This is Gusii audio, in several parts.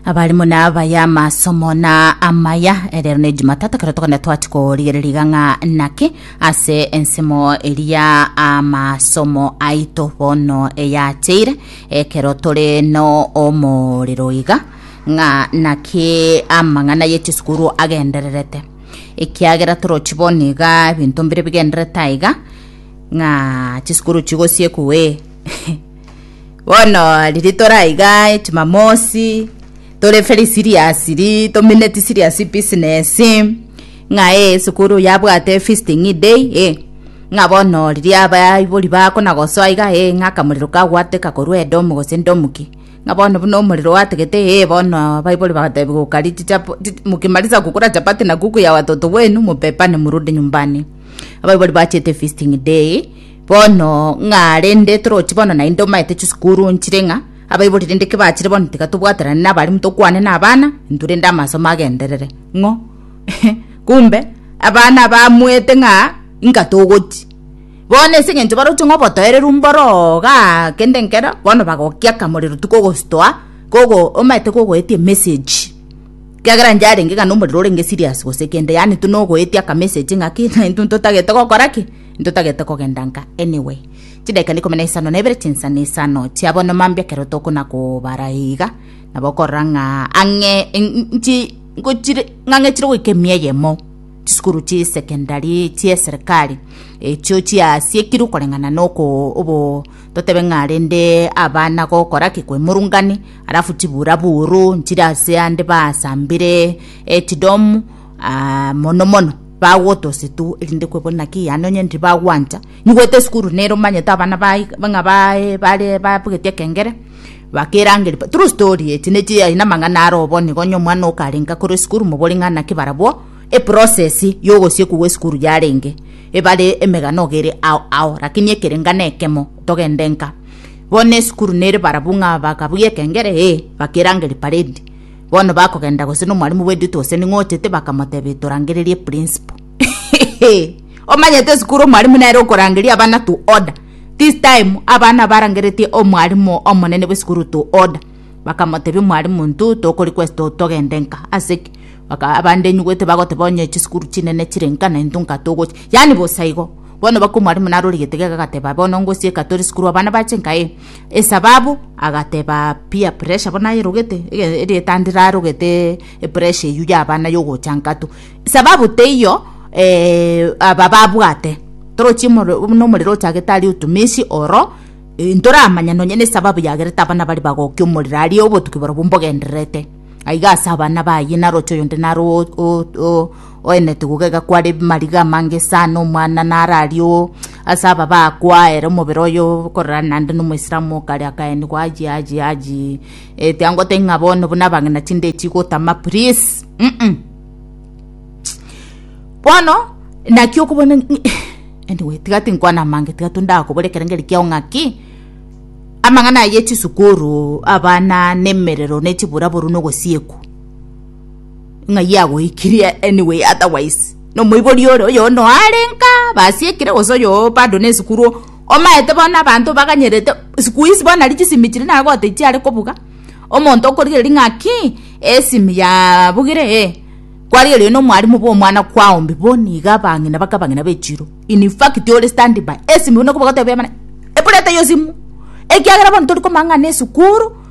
abarimo nabaya amasomo na amaya Eh, rero ne jumatatu kero tokone twati korigereriga ng'a naki ase ensemo eria amasomo aito bono eyacheire ekero tore no omorero iga ng'a naki amang'ana ye chisukuru agendererete ekiagera torochi bono iga ebinto mbire bigenderete aiga ng'a chisukuru chigosiekwe Bono riria tore aiga echimamosi tore very serious ri tomineti serious business ng'a eh esukuru yabwate visiting day eh ng'a bono riria abaibori bakona gosoa iga eh ng'a akamorero kagwateka korwa edomu gose ndomu ki ng'a bono buna omorero gwategete eh bono abaibori bagatebi gokari chichapo chi mukimaliza kukula chapati na kuku ya watoto wenu mubebane murudi nyumbani abaibori bachete visiting day. Bono ng'a rende toroti bono naende omaete chisukuru nchire ng'a abaibori rende ki bachire bono tiga tobwaterane nabarimu tokwane nabana intwe rende amasomo agenderere ng'o kumbe abana bamuete ng'a inga togoti bono ase eng'encho baroche ng'a obotoereru mboro iga kende nkero bono bagokia akamorero tu kogositoa kogo omaete kogoetia emessage kiagera inche arenge ng'a nomorero orenge serious gose kende yaani tuna ogoetia akamessage ng'aki naintwe ntotagete gokora ki. Ntotagete kogenda nka anyway. Chidaika na ikomi na isano na ibere chinsa na isano chia bono mambia ekero tokona kobara iga nabo okorora ng'a ang'e nchi ngochire ng'ang'e chire goika emia eyemo chisukuru chi secondary chia serikali echio chiasiekirwe koreng'ana na oko obo totebe ng'a rende abana gokora ki kwemurungani alafu chibura buru nchire ase ande basambire echidomu aa, mono mono bagwota ase tu erinde kwebori naki yaani onye ndibagwancha nyigwete esukuru nere omanyete abana baye ng'a baye bare babugeti ekengere bakerangeri pa true story echi nechi aye namang'ana are obo nigo onye omwana okarenga korwa esukuru mobori ng'a naki barabwo eprocess ya ogosiekwa gwa esukuru yarenge ebare emegano iga ere ao ao lakini ekerenga na ekemo togende nka bono esukuru nere barabwo ng'a bakabugia ekengere ee bakerangeri paredi Bono bakogenda gose nomwalimu bw'edito gose ning'o ochete bakamotebia torangererie principal. Omanyete esukuru omwalimu nere okorangeria abana to order. This time abana barangeretie omwalimu omonene bw'esukuru to order. Bakamotebia omwalimu ntu tokori kwesito togende nka aseki baka abande enyugwete bagoteba onye chisukuru chinene chire nka na intu nka togochi yani bosa igo. Bono baka omwalimu narorigete gega agateba bono ngosieka tori sukuru abana bache nka ee esababu agateba peer pressure bono aye erogete eretanda erarogete epressure eywo ya abana ya ogocha inkato sababu teiyo aba babwate torochie buna omorero ochagete aria otumesi oro toramanya nonya nesababu yagerete abana baria bagokia omorero aria obotuki borobwo mbogendererete aiga ase abana baye naroche oyonde naro o. Oenete gogega kware mariga amange sana omwana nararie oo ase aba baakwa ere omobere oyo korerana naende na omoislamu okare akaenigwa aji aji aji ete angotebia ng'a bono buna abang'ina tindeti gotama please mm bono naki okobona anyway tiga tinkwana amange tiga tondakobore ekero ngerikio ng'aki amang'ana aya chisukuru abana nemerero nechiburaburu nogosiekwa. ng'a yagoikirie anyway otherwise nomoibori ore oyo no arenka basi ekire gose oyo bado ne sukuru omaete bono abanto baganyerete sikuisi bono nari chisimi chiri nagote chiare kobuga omonto okorigereri ng'a ki esimi yabugire ee kwarigereria no omwarimu bwa omwana kwao mbe bono iga abang'ina baka abang'ina bechiro in fact ore standing by esimi buna okobua gotebia abana eburete eyio simu ekiagera bono tori komanya ng'a ne sukuru.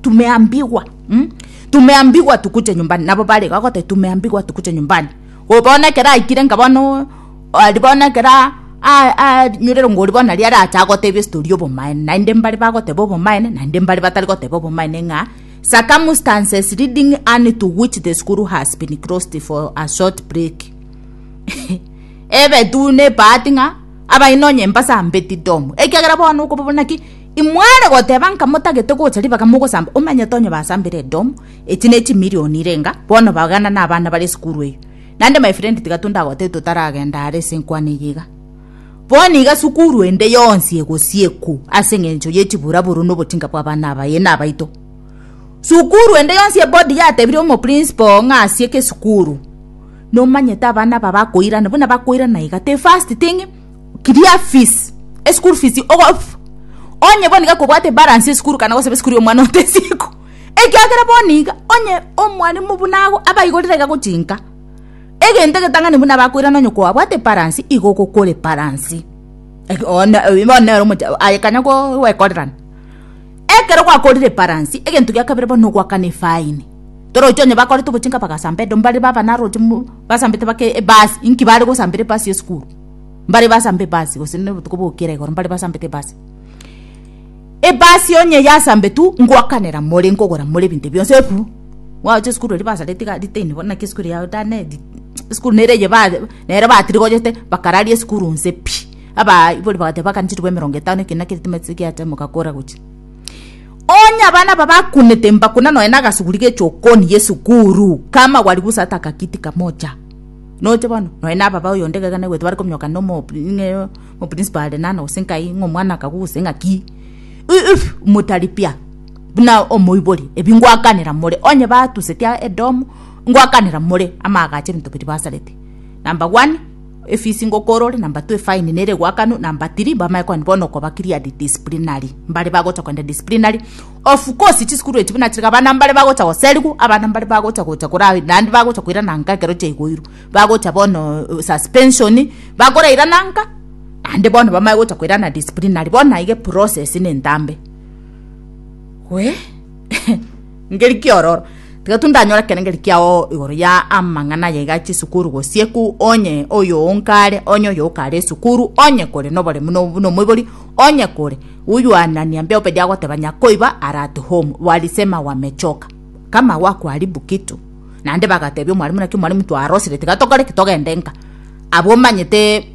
Tumeambigwa mm tumeambigwa tukuche nyumbani nabo bare iga bagoteba tumeambigwa tukuche nyumbani oo bono ekero aikire nka bono oo aria bono ekero aa aa aa rinyore rongo oria bono aria arache agotebie story obomaene naende mbare bagoteba obomaene naende mbare batari goteba obomaene ng'a circumstances leading Anne to which the school has been closed for a short break ebe tu ne ebahati ng'a abaino onye mbasambeti domo ekiagera bono okoba buna ki. Imware goteba nka motagete gocha ribaga mogosamba omanyete onye basambire edomu echi ne chimirioni irenga bono bagana na abana bare esukuru eyio nande my friend tiga tondagotebie totaragenda are ase enkwana eye iga bono iga sukuru ende yonsi egosiekwu ase engencho ye chiburaburu na obotinga bwa abana abaye na abaito sukuru ende yonsi ebodi yatebire omo principal ng'a asieke esukuru nomanyete abana aba bakoirana buna bakoirana iga the first thing Kiria fees, eschool fees ogo onye bono iga kobwate balance esukuru kana gosaba esukuru y'omwana otesiku ekiagera bono iga onye omwarimu buna ago abaigorire iga gochinka egento egetang'ani buna abakoirana onye kwabwate balance igo ogokore balance bono nere omocha aye kanya gwekorerana ekero gwakorire balance egento gia kabere bono nogoakana efaini torochi onye bakorete obochinka bagasamba edomo bare baba naroche mo basambete bake ebasi inki bare gosambera ebasi y'esukuru. mbare basambe ebasi, gose na obotuko bogokera igoro mbare basambete ebasi. Ebasi onye yasambetu ngoakanera more nkogora more ebinto bionsi eburu mwagocha esukuru erio basare tiga ritaini bono naki esukuru yao tane di esukuru nere eye ba nere batirigonyete bakararia esukuru nse pi abaibori bagateba bakane chitugo emerongo etano ekero naki eritime giatemoka kora gochia. Onye abana aba bakunete mbakuna nonye na agasuguri g'echokooni y'esukuru, kama gwarigusata akakitika mocha. Noche bono, nonya na ababa oyonde egega naigwete bare kominyoka ng'a omo- ng'a omoprinsipal are nana gose nkai, ng'a omwana akagwa gose ng'aki. I- if motaripia buna omoibori ebi ngwakanera more, onye batusetie edomu, ngwakanera more amaagacho ebinto biria basarete. Number one, efisi ngokora ore, number two, efaini nere egoakanwa, number three, mbamanye koenda bono okoba cleared disciplinary, mbare bagocha koenda disciplinary. Of course chisukuru echi buna chiriga abana mbare bagocha goserigwa, abana mbare bagocha gocha kora naende bagocha koirana nka ekero chiaigoirwe, bagocha bono suspension, bakorairana nka naende bono bamanye gocha koirana disciplinary, bono aiga eprocess na entambe. Wee ngeri ki ororo? Tiga tu ndanyore ekero ngeri kiao igoro ya amang'ana aya iga ya chisukuru gose ku onye oyo onkare, onye oyo okare esukuru, onye kore noboremu no buna omoibori, onye kore. Uyoanania mbia Obedi agoteba Nyakoiba arate home Oalisema wamechoka kama wakuharibu kitu Naende bagatebia omwalimu naki omwalimu twarosire tiga tokore ki togende nka Abwo omanyete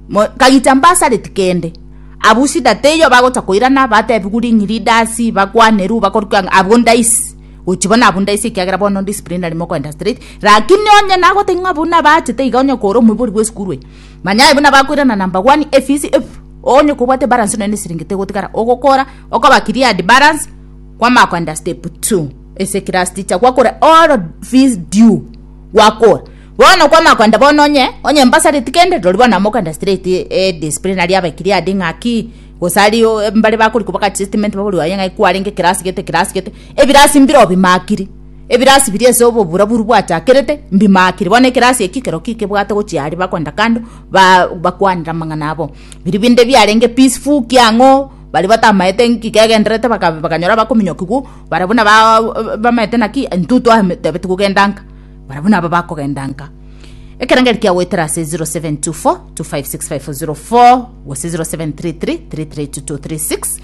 mo kagicha mbasareti kende Abwo shida teiyo bagocha koirana batebigu ring'iri dasi bakwaneru bakor ki ang abwo ndaisi gochi bono abwo ndaisi ekiagera bono disciplinary mokoenda straight Rakini onye nagote ng'a abwo nabachete iga onye kore omoibori bwesukuru eye Manya aye buna bakoirana na mbagwani efisi efu, onye kobwate balance nonya nesiringi tegotigara ogokora okoba cleared balance kwamako under step 2 ase class teacher gwakore all fees due gwakora bono kwamako under bono onye onye mbasareti kende rori bono amoka under straight e disciplinary abe cleared ng'aki gose ari mbare bakori koba ka statement baborwe aye ng'aki kwarenge class gete class gete ebirasi mbire obimakiri Ebirasi biria ase obobura boru bwachakerete mbimaakire. Bono ekerasi eki ekero ki kebwate gochia aria bagoenda kando ba bakwanera amang'ana abo. Biria binde biarenge peaceful ki ang'o baria batamaete nki kegenderete baka bakanyora bakominyokigwa bara buna baa bamaete naki intwe twatebeti kogenda nka bara buna aba bakogenda nka. Ekerengerio kia goetera ase zero seven two four two five six five zero four gose zero seven three three three three two two three six.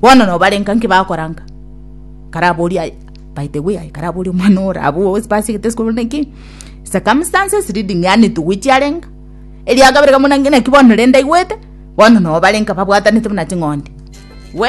Bono nobarenka nki bakoranka? Karaboria aye. By the way, aye karaboria omwana ore abwo ase basegete sikoro neki. Circumstances leading yani togoichi arenka. Eria kabere kamuna naki bono rende aigwete. Bono nobarenka babwatanete buna ching'ondi. We.